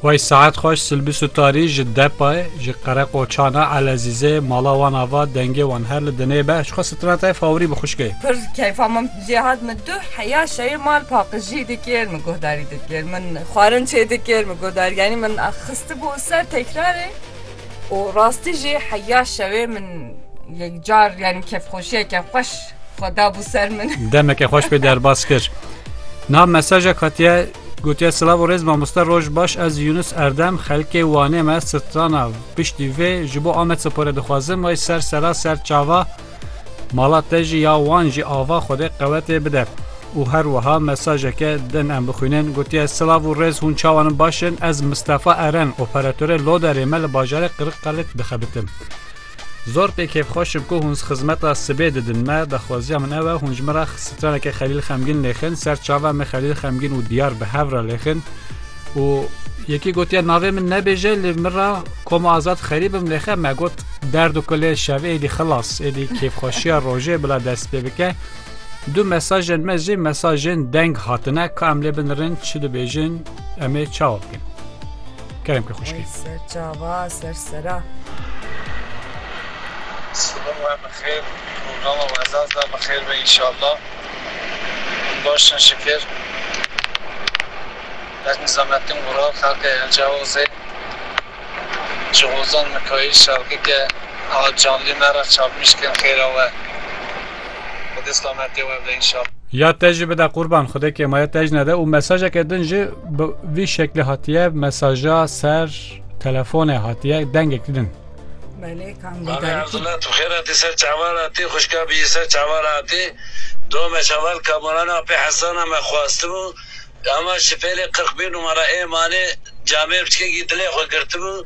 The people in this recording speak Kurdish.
Wey saet xweş Silbî Sutarî ji Depayê, ji Qereqoçana Elezîzê, mala wan ava, dengê wan her li dinê be. Jixwe Sitranetayê favorî bi xwişkê. Pir keyfa min jê hat min tu heya şeyê mal paqijî dikir min guhdarî dikir min xwarin çê dikir min guhdarî yanî min xistibû ser tekrarê û rastî jî heya şewê min yekcar yanî kefxweşiyeke xweş xwe dabû ser min. Demeke xweş pê derbas kir. Niha mesajek hatiye gotiye silav û rêz mamoste roj baş ez Yunus Erdem xelkê Wanê me strana piştî vê ji bo Amed Spore dixwazim way ser sera ser çava mala te jî ya wan jî ava xwedê qewetê bide. û her wiha mesajeke din em bixwînin gotiye silav û rêz hûn çawan in baş in ez Mistefa Eren operatorê loderê me li bajarê Qiriqalê dixebitim. Zor pê kêfxweş im ku hûn xizmeta sibê didin me. Daxwaziya min ew e hûn ji min re straneke Xelîl Xemgîn lêxin. Ser çava me Xelîl Xemgîn û Diyar bi hev re lêxin û yekî gotiye navê min nebêje lê min re koma azad xerî bim lêxe me got derd û kulê şevê êdî xilas êdî kêfxweşiya rojê bila dest pê bike. Du mesajên me jî mesajên deng hatine ka em lê binirin çi dibêjin em ê çawa bikin. Kerem ki xuşkî. Ser çava ser sera. Siba we bi xêr, rojava we zaz da bi xêr be înşallah. Baş in şikir. Ez Nizamettin Gural, xelkê Elcaozê. Ji Hozan Mikayîl şarkike a canlî me re çapmîş kin xêra we. Xwedê slametiye we bide înşallah. Ya te jî bide qurban xwedekê ma ya te jî nede û mesajeke din jî bi vî şeklê hatiye mesaja ser telefonê hatiye dengekî din. Belê kam Navê bidayî ku Erdila tu xêr hatî ser çava re hatî xwişka bijî ser çava re hatî do me şeval kamoran apê hesana me xwastibû ema şifêlê qirqbîr numara ê manê camê biçikekî dilê xwe girtibû